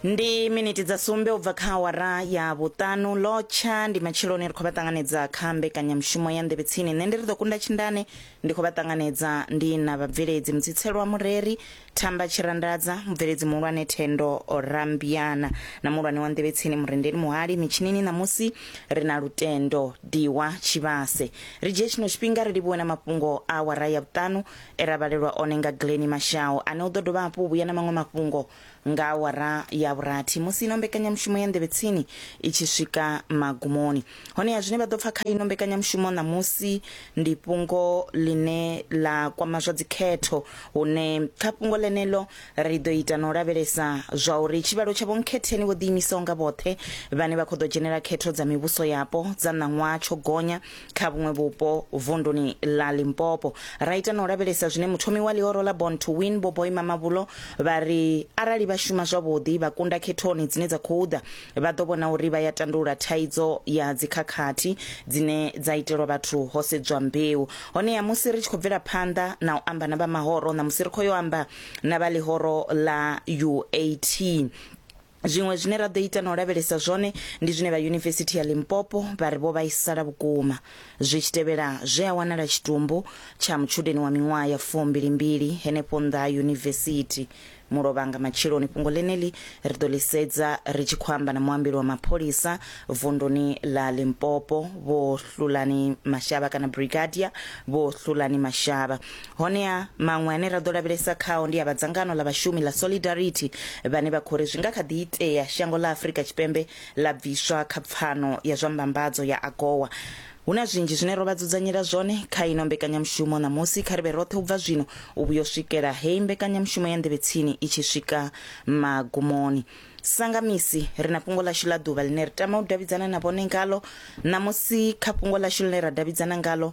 ndi miniti dza sumbe ubva kha awara ya vhuṱanu lotsha ndi matsheloni ri khou vha ṱanganedza kha mbekanyamushumo ya nḓevhe tsini nṋe ndi ri ḓo kunda tshindane ndi khou vha ṱanganedza ndi na vhabveledzi mutsitselwa mureri thamba tshirandadza mubveledzi muhulwane thendo rambiana na muhulwane wa nḓevhe tsini murendeli muhali mitshinini ṋamusi ri na lutendo diwa tshivhase ri dzhie tshino tshifhinga ri livhuwe na mafhungo a awara ya vhuṱanu e ra vhalelwa one nga Glennie Mashau ane u ḓo dovha hafhu u vhuya na maṅwe mafhungo nga awara ya vhurathi musi ino mbekanyamushumo ya Nḓevhe Tsini i tshi swika magumoni. Honeha zwine vha ḓo pfa kha ino mbekanyamushumo ṋamusi ndi fhungo ḽine ḽa kwama zwa dzikhetho hune kha fhungo ḽeneḽo ri ḓo ita na u lavhelesa zwa uri tshivhalo tsha vhonkhetheni vho ḓiimisaho nga vhoṱhe vhane vha khou ḓo dzhenela khetho dza mivhuso yapo dza ṋaṅwaha tsho gonya kha vhuṅwe vhupo vunduni ḽa limpopo ra ita na u lavhelesa zwine muthomi wa ḽihoro ḽa born to win vho boima mavhulo vha ri arali vha shuma zwavhuḓi vha kunda khethoni dzine dza khou ḓa vha ḓo vhona uri vha ya tandulula thaidzo ya dzikhakhathi dzine dza itelwa vhathu ho sedzwa mbeu honeha musi ri tshi khou bvela phanḓa na u amba na vha mahoro na musi ri khou yo amba na vha ḽihoro ḽa uat Zwiṅwe zwine ra ḓo ita na u lavhelesa zwone ndi zwine vha Yunivesithi ya Limpopo vha ri vho vhaisala vhukuma zwi tshi tevhela zwe a wanala tshitumbu tsha mutshudeni wa miṅwaha ya fumbilimbili henefho nnḓa ha yunivesithi Mulovhanga matsheloni. Fhungo ḽeneḽi ri ḓo ḽi sedza ri tshi khou amba na muambeli wa mapholisa vunduni ḽa Limpopo Vho Hlulani Mashavha kana Brigadier Vho Hlulani Mashavha. honeha maṅwe ane ra ḓo lavhelesa khao ndi a vha dzangano ḽa vhashumi ḽa solidarity vhane vha khou ri zwi nga kha ḓi itea shango ḽa afurika tshipembe ḽa bviswa kha pfano ya zwa mbambadzo ya agowa hu na zwinzhi zwine ro vha dzudzanyela zwone kha ino mbekanyamushumo ṋamusi kha ri vhe roṱhe u bva zwino u vhuya u swikela heyi mbekanyamushumo ya nḓevhetsini i tshi swika magumoni sanga misi ri na fhungo ḽashu ḽa ḓuvha ḽine ri tama u davhidzana na vhone ngalo ṋamusi kha fhungo ḽashu ḽine ra davhidzana ngalo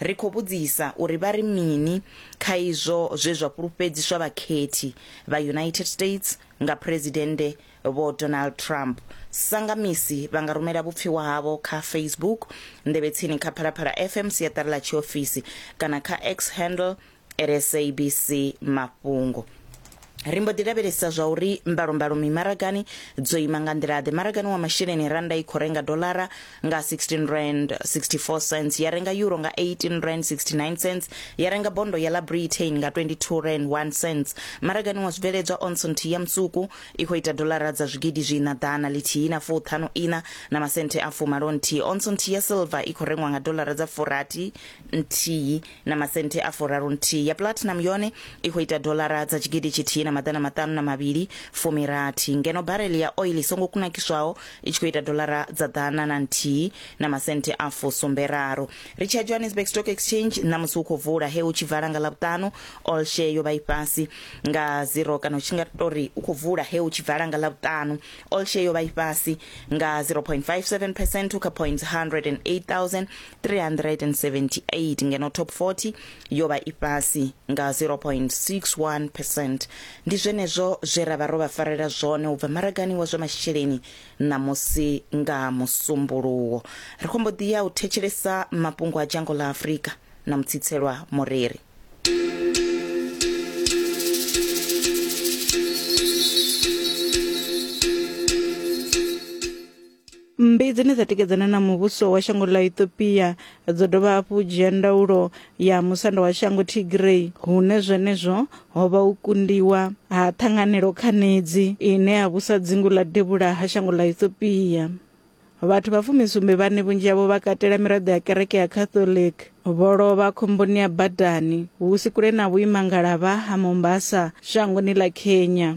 Ri khou vhudzisa uri vha ri mini kha izwo zwe zwa fhulufhedziswa vhakhethi vha United States nga Phresidennde Vho Donald Trump. Sa nga misi, vha nga rumela vhupfiwa havho kha Facebook, Nḓevhetsini kha Phalaphala FM siaṱari ḽa tshiofisi, kana kha X handle, lsabc mafhungo ri mbo ḓi lavhelesa zwa uri mbalombalo mimaragani dzo ima nga nḓila-ḓe maragani wa masheleni randa i khou renga dolara nga 16 rand 64 cents ya renga euro nga 18 rand 69 cents ya renga bondo ya la britain nga 22 rand 1 cents maragani wa zwibveledzwa onson nthihi ya musuku i khou ita dolara dza zwigidi zwiina ḓana lithihi na fuṱhanu ina na masenthe a fumalo nthihi onson nthihi ya silver i khou rengwa nga dolara dza furathi nthihi na masente a furaru nthihi ya platinum yone i khou ita dolara dza tshigidi tshithihi na maḓana maṱanu na mavhili fumirathi ngeno barele ya oil i songo kunakiswaho i tshi khou ita dolara dza ḓana na nthihi na masente a fusumberaru ri tshi ya johannesburg stock exchange ṋamusi hu khou vula he hu tshi vala nga ḽavhuṱanu all share yo vha i fhasi nga zero kana u tshi nga tori u khou vula he hu tshi vala nga ḽavhuṱanu all share yo vha i fhasi nga 0.57 percent u kha point 108 378 ngeno top 40 yo vha i fhasi nga 0.61 percent ndi zwenezwo zwe ra vha ro vha farela zwone u bva maragani wa zwa masheleni ṋamusi nga musumbuluwo ri khombo ḓi ya u thetshelesa mafhungo a dzhango ḽa afurika na mutsitselwa moreri mmbi dzine dza tikedzana na muvhuso wa shango ḽa ethiopia dzo dovha hafhu dzhia ndaulo ya musanda wa shango tigray hune zwenezwo ho vha u kundiwa ha ṱhanganelo khanedzi ine ya vhusa dzingu ḽa devhula ha shango ḽa ethiopia vhathu vha fumisumbe vhane vhunzhi havho vha katela miraḓo ya kereke ya catholic vho lovha khomboni ya badani hu si kule na vhuimangalavha ha mombasa shangoni ḽa kenya